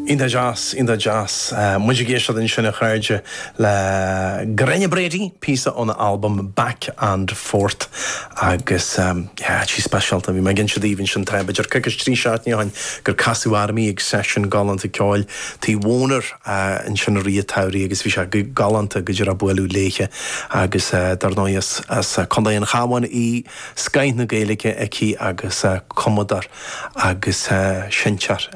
Iontach deas, iontach deas. Muid ag éisteacht ansin, a chairde, le Gráinne Brady, píosa óna albam Back and Forth. Agus yeah, sí speisialta. Bhí mé ag inse daoibh ansin tá, b'fhéidir, coicís trí seachtaine ó shin gur casadh orm í ag seisiún galánta ceoil tí Warner ansin i rith an tsamhraidh agus bhí sé galánta go díreach bualadh léithe. Agus dar ndóigh, as Contae an Chabháin í, scoith na Gaeilge aici agus cumadóir. agus seinnteoir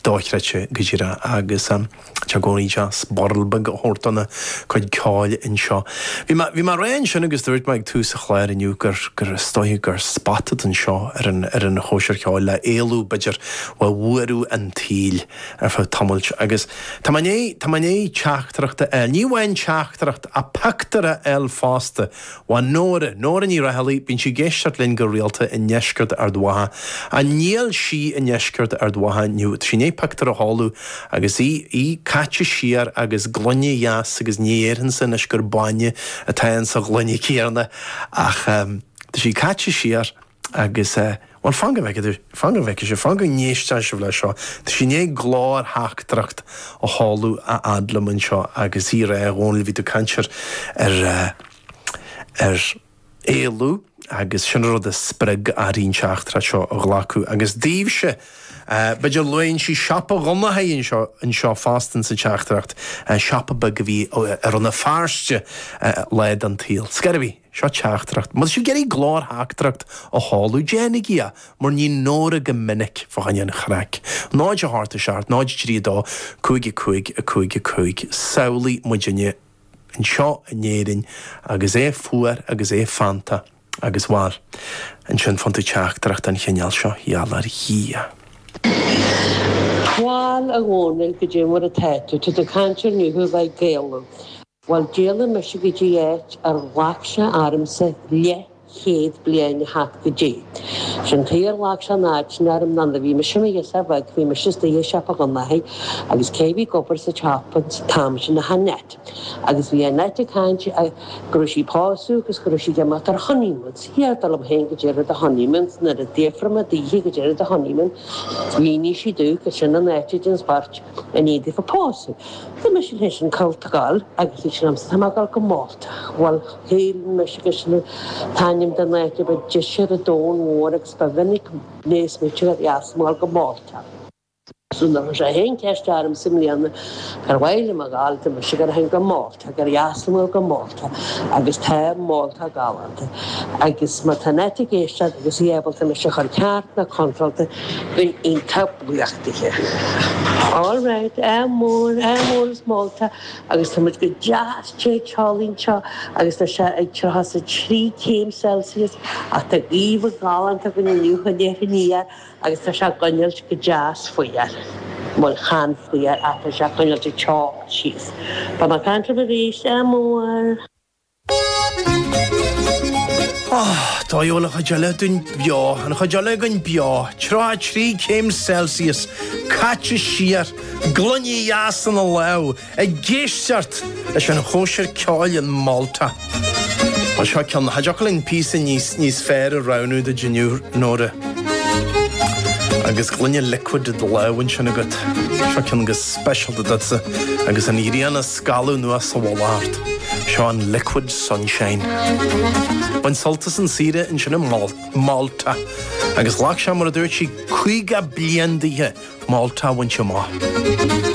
dochreidte go díreach agus tá sé i gcónaí deas birl beag a thabhairt dona cuid ceoil anseo. Bhí mé bhí mé ag rá ansin agus dúirt mé ag tús an chláir inniu gur gur is dócha gur spota atá anseo ar an ar an chóisir cheoil le éalú b'fhéidir ó bhuaireamh an tsaoil ar feadh tamailt agus tá mé tá mé i ndiaidh teachtaireacht a fháil ní amháin teachtaireacht ach pictiúr a fháil fosta Ó Nóra, Nóra Ní Raghallaigh, bíonn sí ag éisteacht linn go rialta, i ndeisceart Ard Mhacha. Ach níl sí i ndeisceart Ard Mhacha inniu. Tá sí i ndiaidh pictiúr a sheoladh agus í, í caite siar agus gloine dheas agus ní dhéarfainnse anois gur bainne atá ann sa ghloine chéanna ach tá sí caite siar. Agus, eh, bhuel, fan go bhfeicfidh, fan go bhfeicfidh sibh, fan go n-éisteann sibh leis seo, tá sí i ndiaidh glórtheachtaireacht a sheoladh a fhad liom anseo agus í ag rá, a Dhónaill, bhí tú ag caint ar, ar eh, ar éalú agus sin an rud a spreag uirthi an teachtaireacht seo a ghlacadh agus daoibhse, eh, b'fhéidir luann sí siopa Dhonnchaidh anseo, anseo fosta insa teachtaireacht, eh, siopa beag a bhí i Rann na Feirste, eh, lá den tsaol. Scor ar bith. Seo teachtaireacht. Má tá sibh ag iarraidh glórtheachtaireacht a sheoladh, déanaigí é, mar a ní Nóra go minic fá choinne an chraic. 0 8 7 0 3 2 5 5 5 5 Samhlaigh muidinne anseo in Éirinn agus é fuar agus é feannta agus, bhal, ansin faigheann tú teachtaireacht den chineál seo, gheall ar Dhia. Bhal, a Dhónaill, cad é mar atá tú, tú ag caint ar nithe uilig ag éalú. Bhuel, d'éalaigh mise go dtí áit ar ghlac sé ormsa leithchéad bliain a theacht go dtí. Is é an fáth ar ghlac sé an fhad sin orm ná nuair a bhí mise i mo ghirseach bheag, bhí mise istigh i siopa Dhonnchaidh agus cé a bhí ag obair sa tsiopa an t-am sin ach Annette. Agus bhí Annette ag caint go raibh sí ag pósadh agus go raibh sí ag imeacht ar honeymoon. Is dar liom féin, cad é an rud é honeymoon, nuair a d'fhiafraigh mé daoithe cad é an rud é honeymoon, mhínigh sí domh gur sin an áit a dtéann beirt. I ndiaidh daofa pósadh, dúirt mise léithe ansin cá bhfuil tú ag dul agus dúirt sí liomsa tá mé ag dul go Málta. Bhuel, shíl mise gur sin an t-ainm den áit a ba deise ar an domhan mhór agus ba mhinic a mheas mise gur dheas domh a dhul go Málta. So nuair a chuir siad an cheist ormsa i mbliana cár mhaith liom a dhul, dúirt mise ag cur fhéin go Málta. Tá go leasamhail go Málta agus tá Málta galánta agus má tá an áit ag éisteacht agus í ábalta mise a chur ceart nó contrálta, bheinn iontach buíoch dithe. All right, ádh mór as Málta agus tá muid go deas te teolaí anseo agus tá sé ag tríocha 's a trí céim Celsius ach tá gaoth ghalánta againn inniu, a déarfainn, yeah. agus tá sé ag coinneáilt go deas fionnuar. Bhuel, chan fuar ach tá sé ag coinneáilt an teocht síos. Beidh mé ag caint libh arís, ádh mór. Tá, seo an chuid eile den bheo, an chuid eile den beo, tríocha trí céim Celsius, caite siar, gloine dheas ina lamh, Ag éisteacht leis an chóisir ceoil in Málta. Seo ceann nach dtiocfadh linn píosa níos fearr a roghnú duit, a Nóra. Agus gloine liquid i do lámh ansin agat, seo ceann go speisialta duitse agus an ghrian ag scaladh anuas sa mhullach ort. Seo an Liquid Sunshine. Bain sult as an saoire ansin in Málta agus ghlac sé, mar a dúirt sí, 50 bliain daoithe Málta a bhaint amach.